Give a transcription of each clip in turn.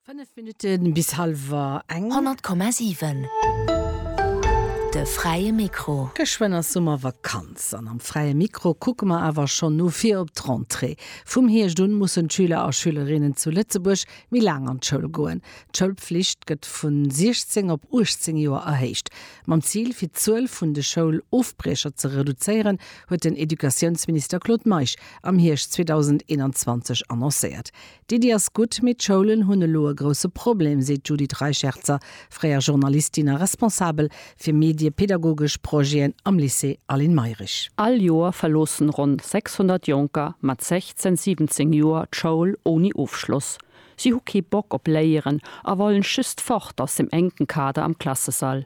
Fënnef Minutte bis hallwer eng. 100,7, De fräie Mikro. Geschwënn ass Summervakanz an am fräie Mikro kucke mer awer schonn no vir op d'Rentrée. Vum Hierscht un mussen d'Schüler a Schülerinnen zu Lëtzebuerg méi laang an d'Schoul goen. D'Schoulpflicht gëtt vu 16 op 18 Joer erhéicht. Mam Zil, fir d'Zuel vun de Schoulofbriecher ze reduzéieren, huet den Educatiounsminister Claude Meisch am Hierscht 2021 annoncéiert. D'Iddi ass gutt, mee d'Schoulen hunn elo e grousse Problem, seet d'Judith Reicherzer, fréier Journalistin a Responsabel fir mediepedagogesch Projeten am Lycée Aline Mayrisch. All Joer verloossen ronn 600 Jonker mat 16, 17 Joer d'Schoul ouni Ofschloss. Si hu kee Bock op Léieren a wollen just fort aus dem enken Kader am Klassesall.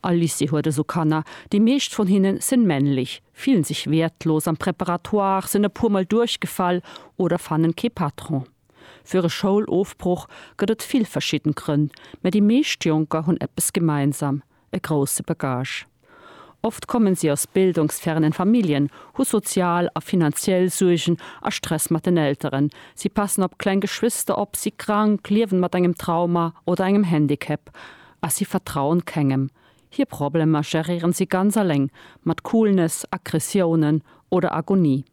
All Lycée huet eso Kanner, déi meescht von hinnen sen männlich, fillen sich wertlos am Préparatoire, sen e puer mol duerchgefall oder fannen kee Patron. Für e Schoulofbruch gëtt et vill verschidden Grënn, mä déi meescht Jonker hunn eppes gemeinsam, e grousse Bagage. Oft kommen sie aus bildungsfernen Familien, hu sozial a finanziell Suergen a Stress mat den Elteren, sie passen op kleng Geschwister op, si krank, liewen mat engem Trauma oder engem Handicap, a si vertrauen kengem, hir Problemer geréieren si ganz alléng, mat Coolness, Aggressiounen oder Agonie.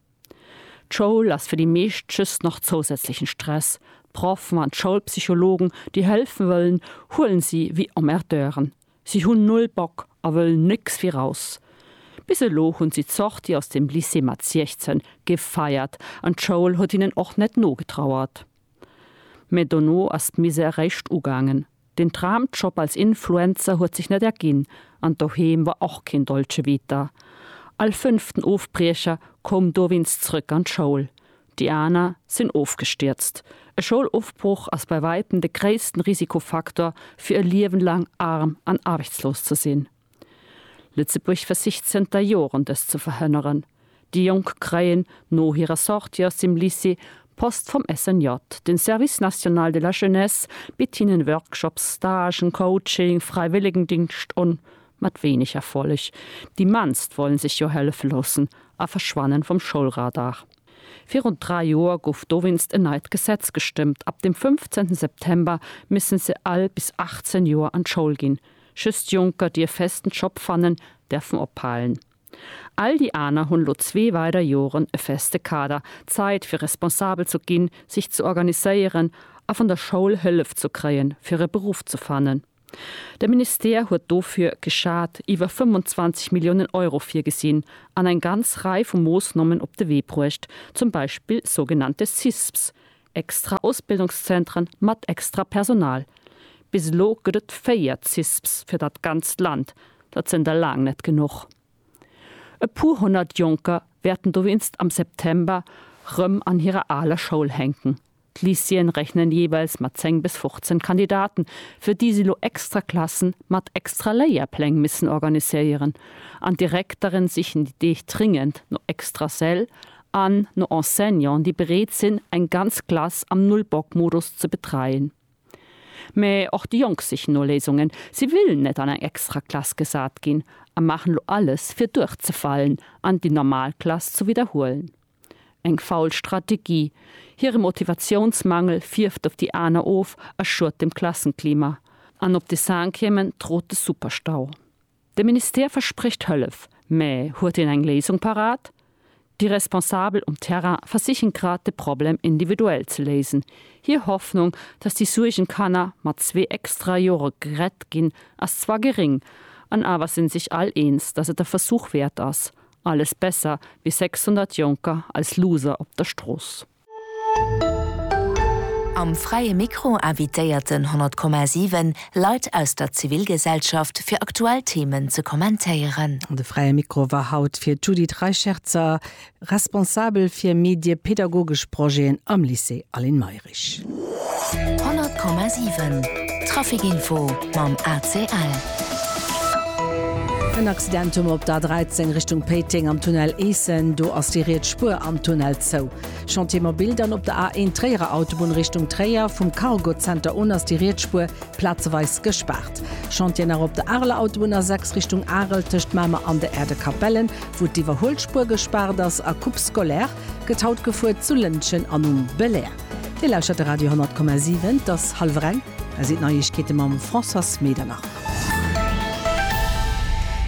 D'Schoul ass fir déi meescht just nach zousätzlechen Stress, d'Proffen an d'Schoulpsychologen déi hëlfen wëllen, huelen si wéi Emmerdeuren. Si hunn null Bock a wëllen nécks wéi raus. Bis elo hunn si d'Sortie aus dem Lycée mat 16 gefeiert an d'Schoul huet hinnen och net nogetrauert. Mä dono ass d'Misère réischt ugaangen. Den Traumjob als Influencer huet sech net erginn an doheem war och keen Dolce Vita. All fënnften Ofbriecher koum dowéinst zrëck an d'Schoul, déi aner sinn ofgestierzt. E Schoulofbroch ass bei wäitem de gréissten Risikofaktor fir e Liewen laang arm an aarbechtslos ze sinn. Lëtzebuerg versicht zënter Joren dëst ze verhënneren. Déi Jonk kréien no hirer Sortie aus dem Lycée Post vum SNJ. Den Service National de la Jeunesse bitt hinnen Workshops, Stagen, Coaching, Fräiwëllegendingscht un, mat wéineg Erfolleg. Déi mannst wollen sech jo hëllefe loossen a verschwannen vum Schoulradar. Virun 3 Joer gouf dowéinst en neit Gesetz gestëmmt, ab dem 15 September missen se all bis 18 Joer an d'Schoul ginn. Just Jonker dierf festen Job fannen, därfen ophalen. All déi aner hunn lo zwee weider Joren e feste Kader, Zait fir responsabel zu ginn, sich ze organiséieren a vun der Schoul Hëllef zu kréien fir e Beruff ze fannen. De Ministère huet dofir, geschat, iwwer 25 Milliounen Euro virgesinn an eng ganz Rei vu Moossnommen op de Wee bruecht, zum Beispill sougenannte CISPs, Extra Ausbildungszentren mat extra Personal, bis elo gëtt et 4 CISPs fir dat ganzt Land, dat sinn der laang net genuch. E puer honnert Jonker wäerten dowéinst am September rëm an hirer aler Schoul hänken. D'Lycéeën rechnen jeeweils mat 10 bis 15 Kandidaten, fir déi si lo extra Klassen mat extra Léierpläng missen organiséieren. An d'Direktere sichen déi Deeg dringend no extra Säll an no Enseignanten, déi bereet sinn, eng ganz Klass am Null-Bock-Modus ze betreien. Mä och déi Jonk sichen no Léisungen. Si wëllen net an eng extra Klass gesat ginn a maachen elo alles, fir duerchzefalen an déi normal Klass ze widderhuelen. Eng faul Strategie. Hire Motivatiounsmangel fierft op déi aner of a schuet dem Klassenklima. An op de Cinquièmen trot de Superstau. De Ministère versprécht Hëllef, mä huet en eng Léisung parat? Déi Responsabel um Terrain versichen grad de Problem individuell ze léisen. Hir Hoffnung, datt déi Suergenkanner mat zwee extra Jore gerett ginn, ass zwar geréng, an awer si sech all eens, datt et e Versuch wäert ass. Alles besser wéi 600 Jonker als Loser op der Strooss. Am Fräie Mikro invitéierten 100,7 Leit aus der Zivilgesellschaft fir aktuell Themen ze kommentéieren. De Fräie Mikro war haut fir d'Judith Reicherzer, Responsabel fir mediepädagogesch Projeten am Lycée Aline Mayrisch. 100,7 Trafic Info mam ACL. En Accidentum op der A13 Richtung Péiteng am Tunnel Eessen. Do ass déi riets Spuer am Tunnel zou. Chantier mobil dann op der A1 Tréierer Autobunn Richtung Tréier. Vum Cargo Center un ass déi riets Spuer plazeweis gespaart. Chantier nach op der Areler Autobunn A6 Richtung Arel tëscht Mamer an de Erdekapellen, wou d'Iwwerhuelspuer gespaart ass. A Coupe scolaire gëtt haut gefuer zu Lëntgen an um Belair. Dir lauschtert de Radio 10,7, et ass hallwer eng, hei sinn d'Neiegkeete mam Françoise Medernach.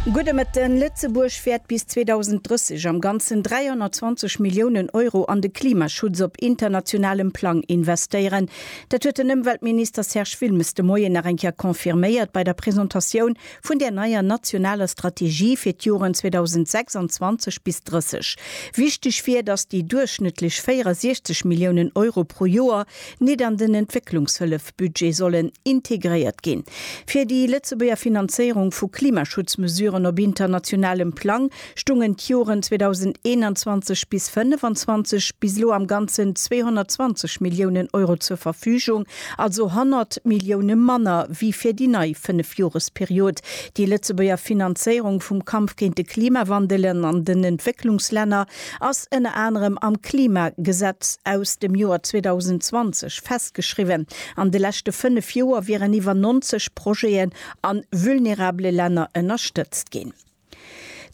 Gudde Mëtten, Lëtzebuerg wäert bis 2030 am Ganzen 320 Milliounen Euro an de Klimaschutz op internationalem Plang investéieren. Dat huet den Ëmweltminister Serge Wilmes de Moien nach eng Kéier confirméiert bei der Presentatioun vun där neier nationaler Strategie fir d'Joren 2026 bis 30. Wichteg wier, datt déi duerchschnëttlech 64 Milliounen Euro pro Joer nit an den Entwécklungshëllef-Budget sollen integréiert ginn. Fir déi Lëtzebuerger Finanzéierung vu Klimaschutzmesuren op internationalem Plang stungen d'Joren 2021 bis 25 bis elo am ganzen 220 Milliounen Euro zur Verfügung, also 100 Millioune manner wéi fir déi nei Fënnefjoresperiod. Déi Lëtzebuerger Finanzéierung vum Kampf géint de Klimawandel an den Entwécklungslänner ass ënner anerem am Klimagesetz aus dem Joer 2020 festgeschriwwen. An de leschte fënnef Joer wieren iwwer 90 Projeten a vulnerabele Länner ënnerstëtzt ginn.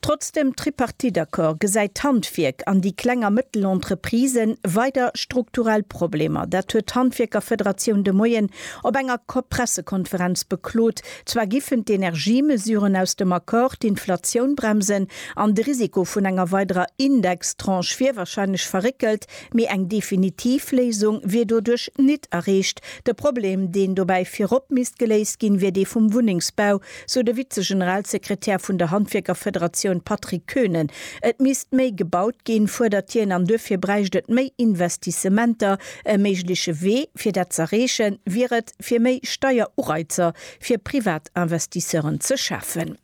Trotz dem Tripartite-Accord gesäit d'Handwierk an déi kleng a mëttel Entreprisë weider strukturell Problemer. Dat huet d'Handwierkerfederatioun de Moien op enger Pressekonferenz beklot. Zwar giffen d'Energiemesuren aus dem Accord d'Inflatioun bremsen an de Risiko vun enger weiderer Indextranche wier warscheinlech verréckelt, mee eng definitiv Léisung wier doduerch nit erreecht. De Problem, deen dobäi virop misst geléist ginn, wier dee vum Wunnengsbau. sou de Vize-Generalsekretär vun der Handwierkerfederatioun Patrick Koenen. Et misst méi gebaut ginn, fuerdert hien, an duerfir bräicht et méi Investissementer. E méigleche Wee, fir dat z'erreechen, wier et, fir méi Steierureizer fir Privatinvestisseuren ze schafen.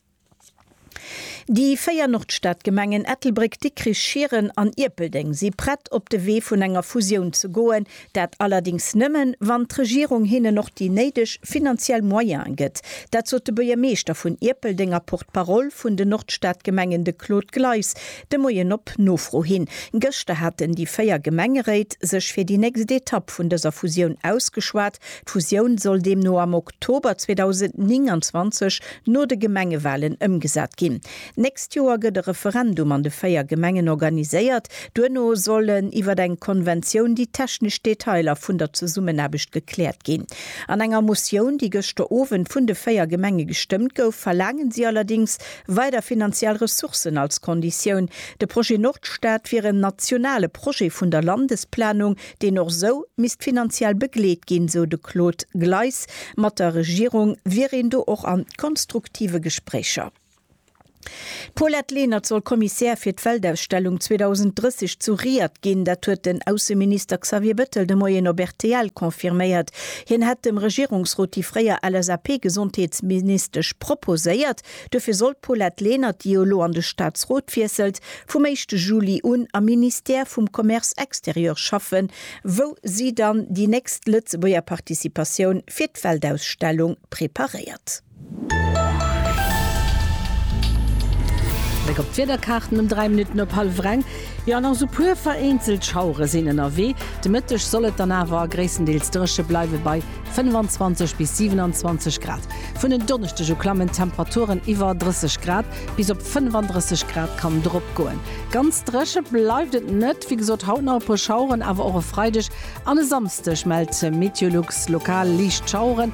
Déi véier Nordstadgemengen Ettelbréck, Dikrich, Schieren an Ierpeldeng si prett, op de Wee vun enger Fusioun ze goen. Dat allerdéngs nëmmen, wann d'Regierung hinnen och déi néideg finanziell Moyene gëtt. Dat sot de Buergermeeschter vun Ierpeldeng a Porte-parole vun den Nordstadgemengen, de Claude Gleis, de Moien op Nofro hin. Gëschter haten déi véier Gemengeréit sech fir déi nächst Etapp vun dëser Fusioun ausgeschwat. D'Fusioun soll deemno am Oktober 2029, no de Gemengewalen, ëmgesat ginn. D'nächst Joer gëtt e Referendum an de véier Gemengen organiséiert. Duerno sollen iwwer eng Konventioun déi technesch Detailer vun der Zesummenaarbecht gekläert ginn. An enger Motioun, déi gëschter Owend vun de véier Gemenge gestëmmt gouf, verlaangen si allerdings weider finanziell Ressourcen als Konditioun. De Projet Nordstad wier en nationale Projet vun der Landesplanung, deen och esou misst finanziell begleet ginn, esou de Claude Gleis. Mat der Regierung wier een do och a konstruktive Gespréicher. D'Paulette Lenert soll Kommissär fir d'Weltausstellung 2030 zu Riad ginn. Dat huet den Ausseminister Xavier Bettel de Moien op rtl confirméiert. Hien hätt dem Regierungsrot déi fréier LSAP-Gesondheetsministesch proposéiert. Dofir soll d'Paulette Lenert, déi jo elo an de Staatsrot wiesselt, vum éischte Juli un am Ministère vum Commerce extérieur schaffen, wou si dann déi nächst Lëtzebuerger Participatioun fir d'Weltausstellung preparéiert. Bléck op d'Wiederkaarten um 3 Minutten op hallef reng. Jo, an och sou puer vereenzelt Schauere sinn ënnerwee. De Mëtteg soll et dann awer gréisstendeels dréche bleiwe bei 25 bis 27 Grad. Vun en Donneschdeg u klammen d'Temperaturen iwwer 30 Grad, bis op 35 Grad kann drop goen. Ganz dréche bleift et net, wéi gesot haut nach e puer Schaueren, awer och e Freideg an e Samsdeg mellt Meteolux lokal liicht Schaueren.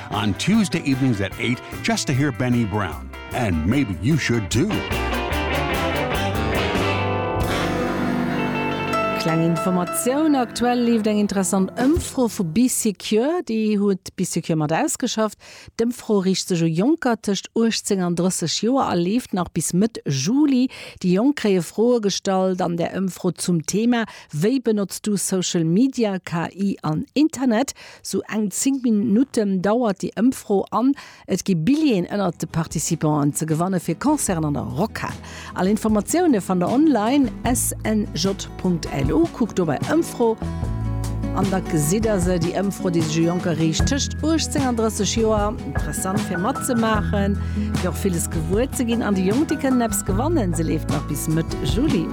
On Tuesday evenings at eight just to hear Benny Brown and maybe you should too. Kleng Informatioun, Aktuell leeft eng interessant Ëmfro vu BeeSecure. Déi huet BeeSecure mat ausgeschafft. D'Ëmfro riicht sech u Jonker tëscht 18 an 30 Joer a leeft nach bis Mëtt Juli. Déi Jonk kréie Froe gestallt an der Ëmfro zum Thema Wéi benotzt du Social Media, KI an Internet? Sou eng 10 Minutten dauert déi Ëmfro an et gi Billjeeën ënnert de Participanten ze gewanne fir Concerten an der Rockhal. All Informatioune fannt der online, snj.lu. Kuckt do bei Ëmfro an da gesitt der se. Déi Ëmfro, déi sech u Jonker riicht tëscht 18 an 30 Joer. Interessant fir matzemaachen, fir och villes gewuer ze ginn. An déi Jonk, déi kënnen eppes gewannen. Se leeft nach bis Mëtt Juli.